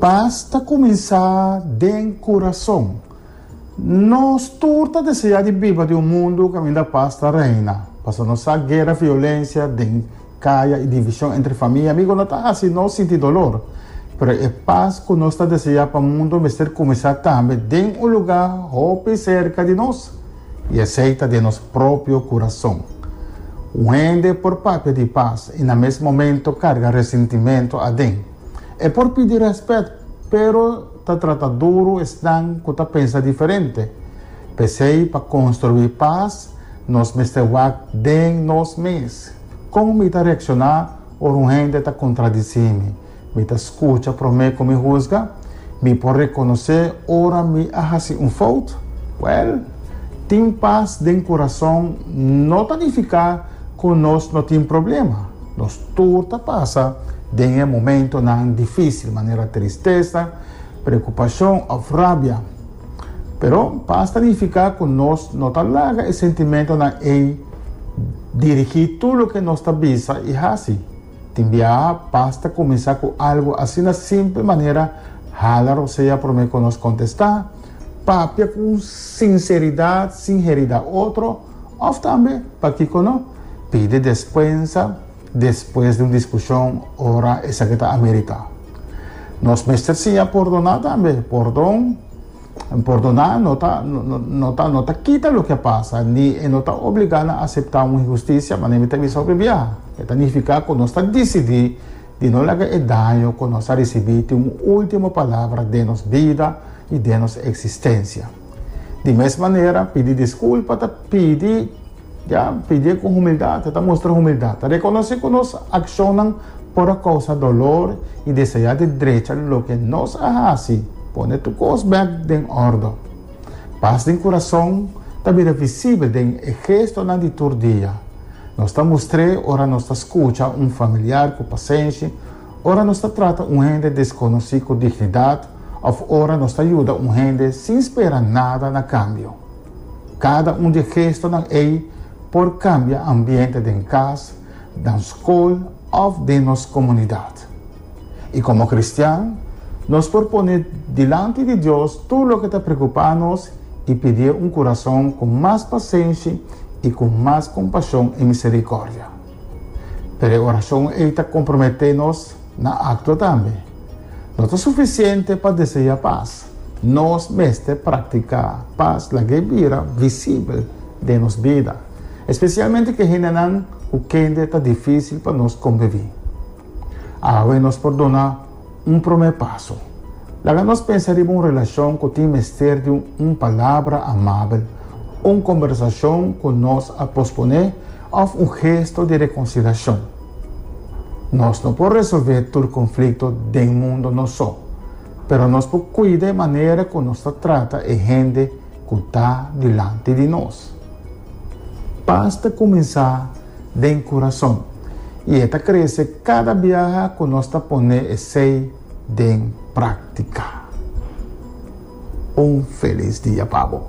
Pas ta kuminsá den kurason. Nos tur ta deseá di biba den un mundu kaminda pas ta reina, pasobra nos sa guera, violensia den kaya i divishon entre famia i amigu no ta hasi nos sinti dolor. Pero e pas ku nos ta deseá pa mundu mester kuminsá tambe den un lugá hopi serka di nos. I esei ta den nos propio kurason. Un hende por papia di pas i na mes momento karga resintimentu aden. E por pidi rèspèt, pero ta trata duru esnan ku ta pensa diferente. P'esei pa konstruí pas nos mester wak den nos mes. Kon mi ta reakshoná ora un hende ta kontradisí mi? Mi ta skucha promé ku mi husga. Mi por rekonosé ora mi a hasi un fout. Wèl, tin pas den kurason no ta nifiká ku nos no tin problema. Nos tur ta pasa den e momentunan difísil, manera tristesa, preokupashon òf rabia. Pero pas ta nifiká ku nos no ta laga e sentimentunan ei dirigí tur loke nos ta bisa i hasi. Tin biaha pas ta kuminsá ku algu asina simpel manera hala rosea promé ku nos kontestá, papia ku un sinseridat sin heri da otro, òf tambe, pakiko no, pidi despensa despues di un diskushon ora esaki ta ameritá. Nos mester siña pordoná tambe, pordon. Pordona no ta, no ta, no ta kita loke a pasa, ni e no ta obligá nan aseptá un inhustisia, manera mi ta bisa otro bia. E ta nifiká ku nos ta disidí di no laga e daño ku nos a risibí tin un último palabra den nos bida i den nos eksistensia. Di mes manera, pidi diskulpa ta pidi. Ya pidié ku humildad, e ta mustra humildad. Ta rekonosé ku nos akshonnan por a kousa dolor i desayá di drecha loke nos a hasi. Pone tur kos bèk den òrdò. Pas den kurason ta bira visibel den e gestonan di tur dia. Nos ta mustr'é ora nos ta skucha un familiar ku pasenshi, ora nos ta trata un hende deskonosí ku dignidad òf ora nos ta yuda un hende sin spera nada na kambio. Kada un di e gestonan ei por kambia ambiente den kas, dan skol òf den nos komunidat. I komo kristian, nos por pone dilanti di Dios tur loke ta preokupá nos i pidié un kurason ku mas pasenshi i ku mas kompashon i miserikòrdia. Pero e orashon ei ta komprometé nos na aktua tambe. No ta sufisiente pa deseá pas. Nos mester praktiká pas laga e bira visibel den nos bida, spesialmente ku e hendenan ku kende ta difísil pa nos kombiví. Awe nos por duna un promé paso. Laga nos pensa riba un relashon ku tin mester di un palabra amabel, un kombersashon ku nos a posponé òf un gesto di rekonsiliashon. Nos no por resolvé tur konflikto den mundo nos so. pero nos por cuida e manera cu nos ta trata e hende cu ta dilanti di nos. Pas ta cuminsa den curason y e ta crece cada biaha cu nos ta pone esey den practica. Un feliz dia pa bo!